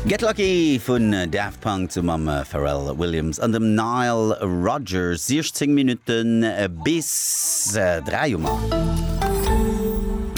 Get Lucky vun Daft Punk zu mam Pharrell Williams an dem Nile Rodgers. 16 Minutte bis 3 hu mer.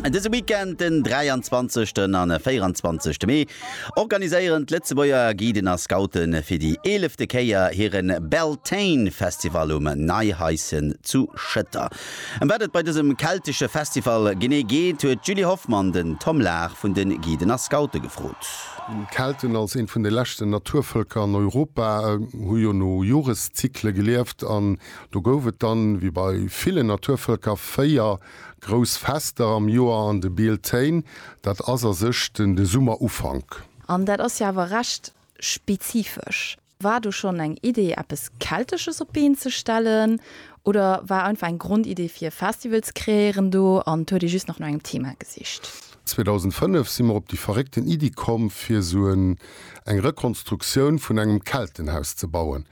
Dëse Weekend, den 23 an 24 Mee, organiséieren d'Lëtzebuerger Guiden a Scoute fir déi eelefte Kéier hire Beltane-Festival um Neihaischen zu Schëtter. Ëm wat et bei dësem keltesche Festival genee geet, huet d'Julie Hoffmann den Tom Lahr vun de Guiden a Scoute gefrot. D'Kelten, als eent vun de leschten Naturvëlker an Europa, hu jo no Joreszykle gelieft. An do gouf et dann, wéi bei villen Naturvëlker, véier grouss Fester am Joer, an de Bealtaine, dat ass a sech de Summerufank. An dat ass jo awer recht spezifesch. War do schonn eng Idee eppes Keltesches op d'Been ze stellen oder war einfach eng Grondidee fir e Festival ze kreéieren do an huet ee just nach no engem Thema gesicht? 2005 si mer op déi verréckten Iddi komm fir sou en eng Rekonstruktioun vun engem Keltenhaus ze bauen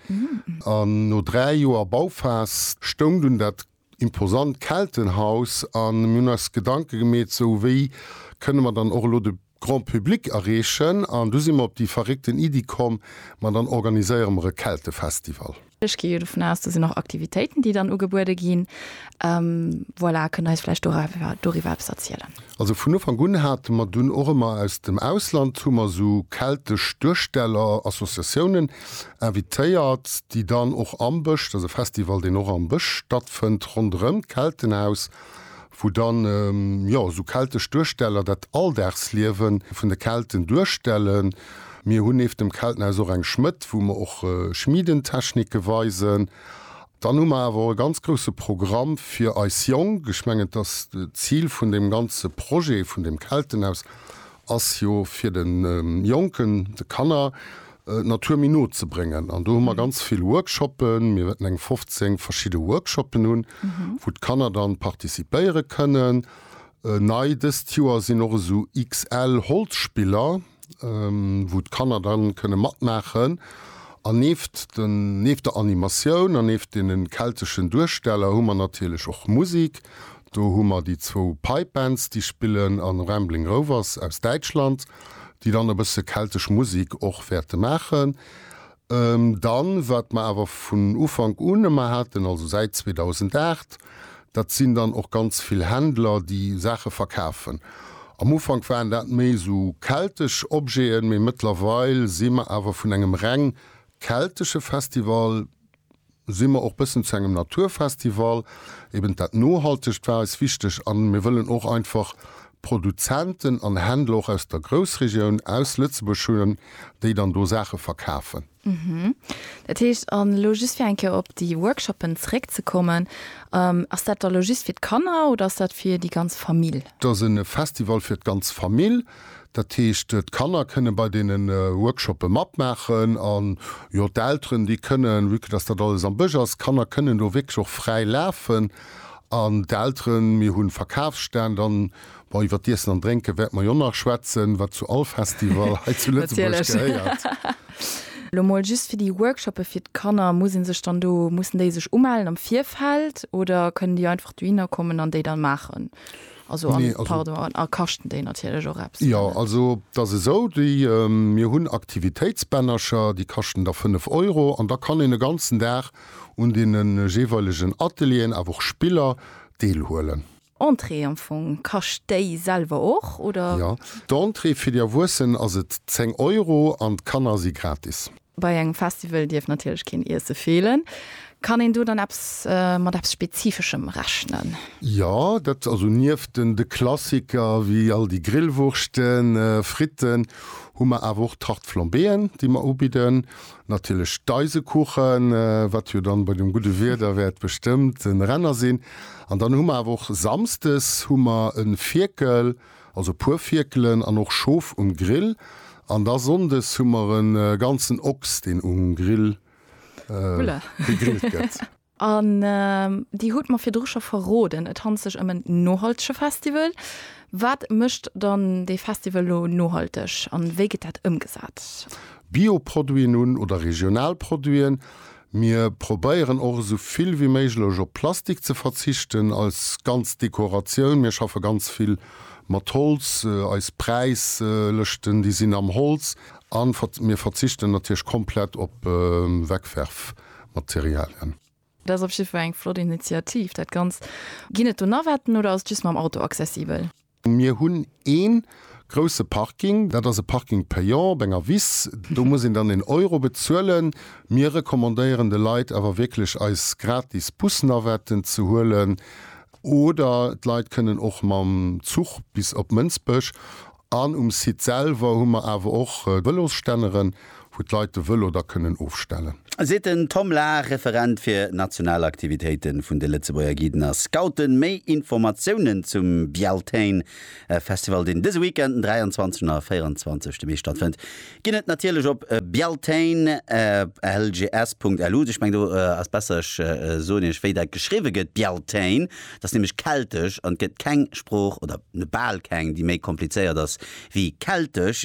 an no 3 Joer Bauphas stoung dunn dat imposant Keltenhaus an mir hunn eis Gedanke gemeet, sou wéi kënne mer dann och elo de Grand Public erreechen an du si mer op déi verréckten Iddi komm, ma dann organiséiere mer e Keltefestival. Ech gi jo dovun aus, do sinn och Aktivitéiten, déi dann ugebuede ginn. Voilà, kënnt eis vläicht doriwwer eppes erzielen? Also vun Ufank un hate mer dunn och ëmmer aus dem Ausland hu mer esou keltesch Duersteller, Associatiounen, invitéiert, déi dann och am Bësch, dat ass e Festival, deen och am Bësch stattfënnt, ronderëm d'Keltenhaus, wou dann, jo, esou keltesch Duersteller dat Alldagsliewe vun de Kelten duerstellen. Mir hunn nieft dem Keltenhaus och eng Schmëdd, wou mer och Schmiedentechnike weisen. Dann hu mer awer och e ganz grousse Programm fir eis Jonk. Ech mengen, dass d'Zil vun deem ganze Projet vun deem Keltenhaus ass jo fir de Jonken, de Kanner d'Natur méi no ze bréngen. An do hu mer ganz vill Workshoppen, mir wäerten eng 15 verschidde Workshoppen hunn, wou d'Kanner dann participéiere kënnen. Nei dëst Joer sinn och esou XL-Holzspiller, wou d'Kanner dann kënne matmaachen. An nieft den, nieft der Animatioun an nieft deenen kelteschen Duersteller hu mer natierlech och Musik. Do hu mer déi zwou Pipe Bands, déi spillen, an Rambling Rovers aus Däitschland, déi dann e bësse keltesch Musik och wäerte maachen. Dann, wat mer awer vun Ufank un ëmmer haten, also säit 2008, dat sinn dann och ganz vill Händler, déi Saache verkafen. Am Ufank waren dat méi esou keltesch Objeten, mee mëttlerweil si mer awer vun engem reng keltesche Festival si mer och bëssen zu engem Naturfestival. Eben dat Nohaltegt war eis wichteg a mir wëllen och einfach Produzenten an Händler och aus der Groussregioun, aus Lëtzebuerg hunn, déi dann do Saache verkafen. Dat heescht, an elo just fir eng Kéier op déi Workshoppen zeréckzekommen, ass dat da elo just fir d'Kanner oder ass dat fir déi ganz Famill? Dat ass e Festival fir d'ganz Famill. Dat heescht, d'Kanner kënne bei deene Workshoppe matmaachen an, jo, d'Elteren, déi kënnen, vu que dass dat alles am Bësch ass, d'Kanner kënnen do wierklech och fräi lafen an d'Elteren. Mir hu Verkafsstänn an, bon, iwwer d'Iessen an Drénke wäerte mer jo nach schwätzen, wat zu all Festival hei zu Lëtzebuerg gehéiert. Elo mol just fir déi Workshoppe fir d'Kanner, muss ee sech dann do, mussen déi sech umellen am Virfeld oder kënnen déi einfach dohinner kommen an déi dann maachen? Also an, pardon, an a kaschten déi natierlech och eppes? Jo, also et ass esou, déi, mir hunn Aktivitéitsbännercher, déi kaschten da 5 Euro an da kann een e ganzen Dag un deene jeeweilegen Atelieren, awer och Spiller, deelhuelen. Entrée am Fong, kascht déi selwer och, oder? Jo, d'Entrée fir déi Erwuessen ass et 10 Euro an d'Kanner si gratis. Bei engem Festival dierf natierlech keen Iesse feelen. Kann een do dann eppes mat eppes Spezifeschem rechnen? Jo, dat also nieft den de Klassiker wéi all déi Grillwurschten, Fritten, hu mer awer och Tarte Flambéeën, déi mer ubidden. Natierlech d'Eisekuchen, wat jo dann bei dem gudde Wieder wäert bestëmmt en Renner sinn. An dann hu mer awer och samsdes hu mer e Fierkel. Also puer Fierkelen an och Schof um Grill an da Sonndes hu mer en ganzen Ochs deen um Grill gegrillt gëtt. An dir hutt mer virdru scho verroden, et handelt sech ëm en nohaltege Festival. Wat mécht dann dee Festival elo nohalteg an wéi gëtt dat ëmgesat? Bio-Produiten un oder regional Produiten, Mir probéieren och esou vill wéi méiglech op Plastik ze verzichten als ganz Dekoratioun. Mir schaffe ganz vill mat Holz, eis Präislëschten déi sinn am Holz an mir verzichten natierlech komplett op Wegwerfmaterialien. Dat ass op jiddwer Fall eng flott Initiativ. Dat Ganzt, ginn et do Navetten oder ass et just mam Auto accessibel? Mir hunn ee grousse Parking, dat ass e Parking payant op enger Wiss. Do muss een dann een Euro bezuelen. Mir recommandéieren de Leit awer wierklech, eis gratis Bus-Navetten ze huelen. Oder d'Leit kënnen och mam Zuch bis op Mënsbech. An um Site selwer hu mer awer och Vëlosstänneren. wou d'Leit de Vëlo da kënnen ofstellen. Seet den Tom Lahr, Referent fir national Aktivitéite vun de Lëtzebuerger Guiden a Scouten. Méi Informatiounen zum Beltane Festival, deen dëse Weekend den 23 a 24 Mee stattfënnt, ginn et natierlech op beltane.lgs.lu. Ech mengen do ass besser ech soen iech wéi dat geschriwwe gëtt, Beltane, dat ass nämlech keltesch an et gëtt keng Sprooch, oder bal keng, déi méi komplizéiert ass wéi keltesch.